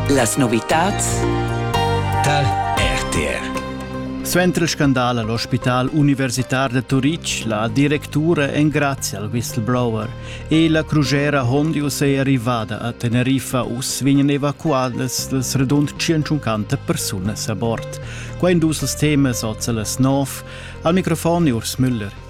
Las novitads tal RTR Suenter il scandal all'ospital universitar da Turitg, la directura engrazia al whistleblower e la crugera Hondius è arrivada a Teneriffa. Uss vegnan evacuadas las radund 150 persunas a bord. Quai in dus temas oz a las 9. Al microfon Urs Müller.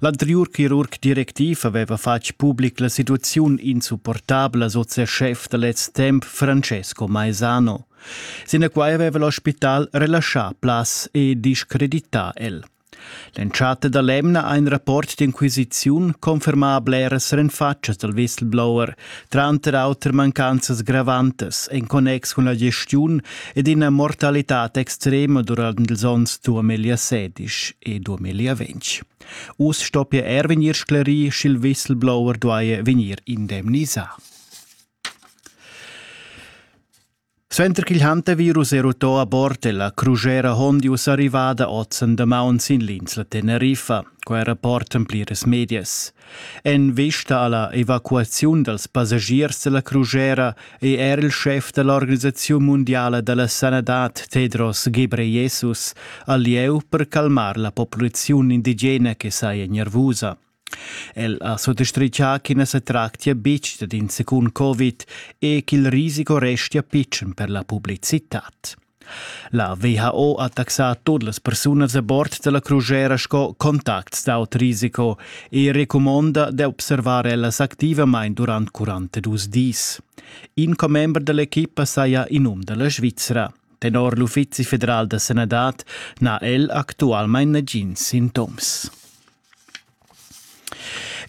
L'anteriur chirurg directiv aveva fatg public la situaziun insupportabla, sot ses schef da lez temp Francesco Maesano. Sinaquai aveva l'ospital relaschà plaz e discredità el. L'entschatta da l'emna ha in rapport d'inquisiziun confermà bleras renfatschas dal whistleblower, tranter auter mancanzas gravantas en connex cun la gestiun ed ina mortalitad extrema durant ils onns 2016 e 2020. Us stoppia er vegnir sclerì, sch'il whistleblower duaja vegnir indemnisà. Suenter ch'il hantavirus era uto a bord è la crusera Hondius arrivada oz en damaun sin l'insla Teneriffa. Quai rapportan pliras medias. En vista alla evacuaziun dals passagiers dalla crusera è er il schef da l'Organisaziun mundiala da la sanadad Tedros Ghebreyesus al lieu per calmar la populaziun indigena che saja nervusa. El ha suttastritgà ch'i na sa tractia betg dad in secund Covid e ch'il risico restia pitschen per la publicitad. La WHO ha taxà tut las persunas a bord da la crusera sco contacts d'aut risiko e recumonda d'observar ellas activamain durant 42 dis. In commember da l'equipa saja in um da la Svizra. Tenor l'Uffizi federal da sanadad n'ha el actualmain nagins sintoms.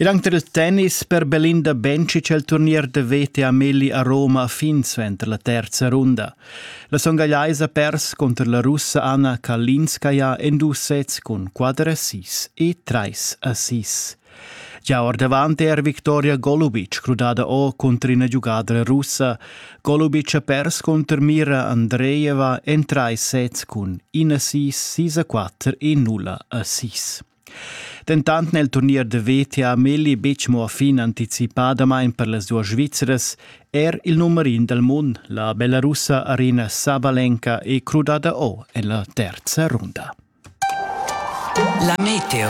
Ed anche il tennis per Belinda Bencic el turnier da vete a Melli a Roma fin suenter la terza runda. La songagliaisa pers contro la russa Anna Kalinskaya en dus sets cun 4 a 6 e 3 a 6. Già ordavant è er Viktoria Golubic crudada o contro ina giugadra russa, Colubic ha pers cunter mira Andreeva en trais sets cun 1-6, 6-4 e 0-6. Dentant nel turnier de veta ha Melli betg mo fin anticipadamain per las duas Svizras, er il nummer in del mund, la belarussa Arina Sabalenka, è crudada o en la terza runda. La meteo.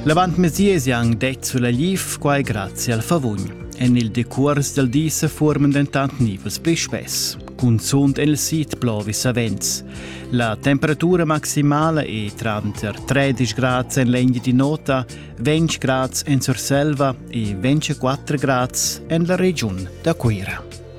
L'avantmesier han detg sulla liv quai grazie al favugn. En il decurs del di se formen dentant nivels pli spess, cunzunt en il sit plovi savens. La temperatura maximale è tranter 13 grad en l'egna di nota, 20 grad en Surselva e 24 grad en la regiun da Cuira.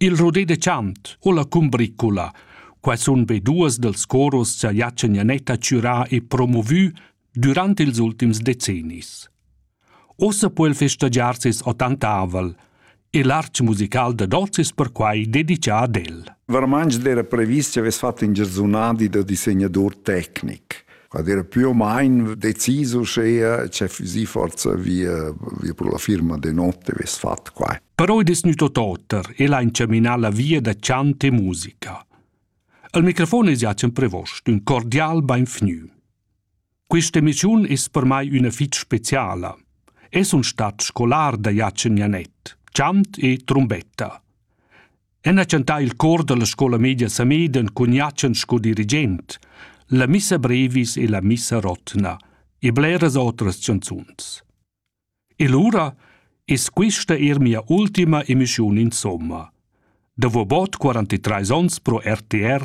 Il rudé de chant o la cumbricula, quai sun be duos dals coros cha Jachen Janetta chürà e promovü dürant ils ultims decennis. Uossa po el festagiar ses ottantavel e l'arch musical dad hoz es perquai dedichà ad el. Varmanc d'eira previs chi avess fat ün giarsunadi da disegnadur tecnic. ad era più o meno deciso uschea c'è si forza via via pro la firma de notte ves fatto qua però è desnuto totter e l'ha inceminà la via da chant e musica al microfon es Jacen Prevost ün cordial beinvgnü Questa emissiun es per mai üna fitg speciala. Es un stat scolar da Jacen Janet, chant e trombetta. En ha chantà il cor dalla scola media Sameden cun Jatschen sco dirigent, la missa brevis e la missa rotna e bleras otras chanzuns. E lura es quista eir mia ultima emischiun insomma. Davo bod 43 ons pro RTR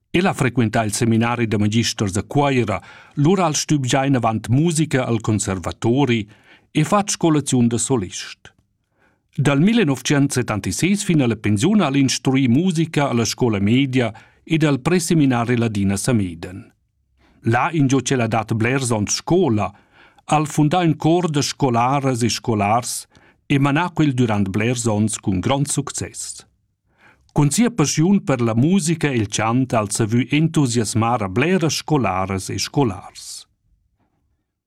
El ha frequentà il seminari da magisters da Cuira, lura al stübgiain avant musica al conservatori e fatg scolaziun da solist. Dal 1976 fin alla pensiun al instruì musica alla scola media ed al preseminari Ladina Sameden. Là ingio ch'el ha dat blers ons scola, al fundà in cor da scolaras e scolars e manà quel durant blers ons cun grond success. Cun sia passiun per la musica e il chant ha el savü entusiasmar a bleras scolaras e scolars.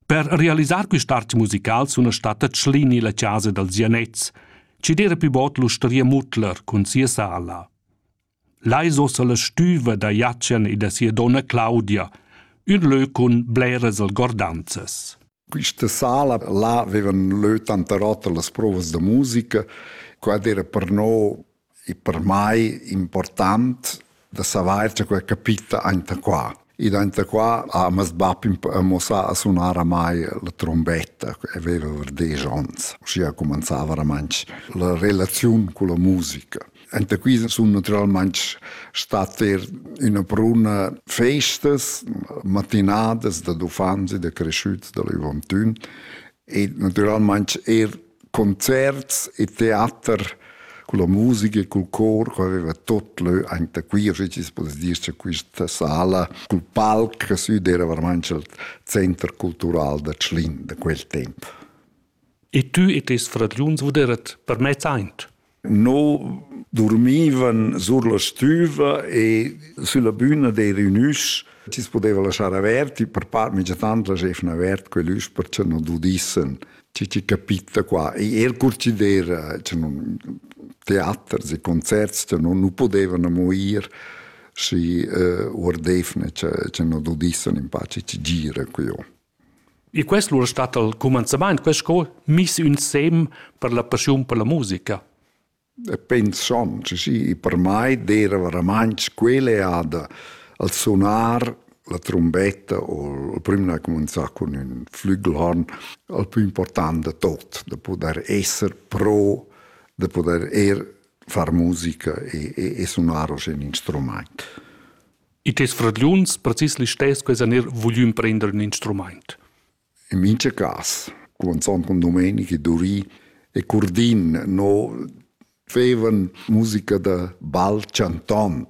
Per realisar quist'art musical suna statta Tschlini la chasa dals Janets, chi d'eira pü bod l'ustaria Mutler cun sia sala. Là es ossa la stüva da Jatschen e da sia donna Claudia, ün lö cun bleras algordanzas. Quista sala là vevan lö tanter oter las provas da musica. Quad era per no e per mai important da savair cha quella capita aint a qua. Ed aint a qua ha mes bap mossà a sunar a mai la trombetta, aveva var desch ons. Uschia cumanzava ramantsch la relaziun culla musica. Enta qui sun naturalmaing stat eir üna bruna festas, matinadas dad uffants e da creschüts da l'Uvantun e naturalmaing eir concerts e teater con la musica e col cor che aveva tot lö anta qui, o schi poss dir cha quista sala cul palc sü d'era veramaing il center cultural da Tschlin da quel temp. E tü e tes fradgliuns vuderet permez aint. No dormivan sur la stüva e sülla büna d'eira ün üsch chi's pudeva laschar avert e per part minchatant laschevan avert quell'üsch per cha non dudissen chi chi capitta qua. E eir cur chi d'eira cha non teaters e concerts cha non nu podevan amo ir schi uh, uardevne cha cha non dudissen in pace chi gira quiò. E quest lura stat al cumanzamaint quest cour miss insem per la passiun per la musica. Pensond chi per mai d'eira veramaints quella eada al sunar la trumbetta o il prüm n'ha cumanzà cun ün flügelhorn al plü important da tot, da pudair esser pro, da pudair eir far musica e, e, e sunar osch ün instrumaint. E tes fradgliuns precis listess quels han er voglü imprender ün instrumaint. In mincha cas, cumanzond con Domenici, Duri e Curdin, no fevan musica da bal chantond.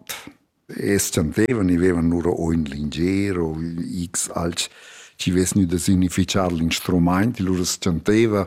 Es chantevan, i vevan lura o ün linger o x alch chi vess gnü da significhar l'instrumaint, e lura s'chanteva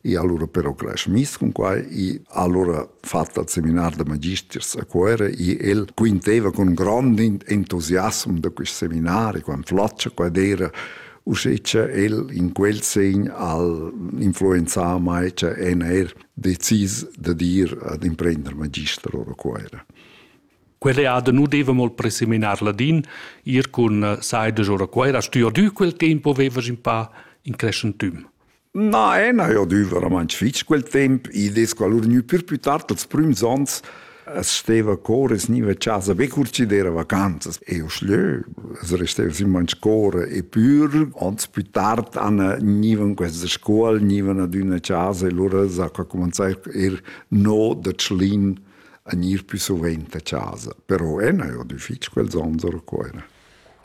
E allora però cresch mis con quai e allora fatto al seminar da magisters a Cuera e el quinteva con grande entusiasmo da questo seminare, quando flaccia qua era uschè che el in quel segn al influenzava mai che en er decis da dir ad imprendere magister ora Cuera. Quell'eada nu deva molt preseminar ladin, ir cun eh, Saides ora Cuera, stuier dü quel tempo vevas in pa in creschentüm. Na, e na, io duiva romantsch fitg quel temp, i des qualur gnü pür plü tard als prüms ans, es steva cor es gniva a chasa be cur chi d'eira vacanzas e io schlö, es resteva simplamaing scour e pür, ans plü tard an gnivan questa scuol, gnivan adüna a chasa e lura s'ha cumanzà eir no da Tschlin a gnir pü suvent a chasa. Però e na, io dü fitg quels ans ora qua.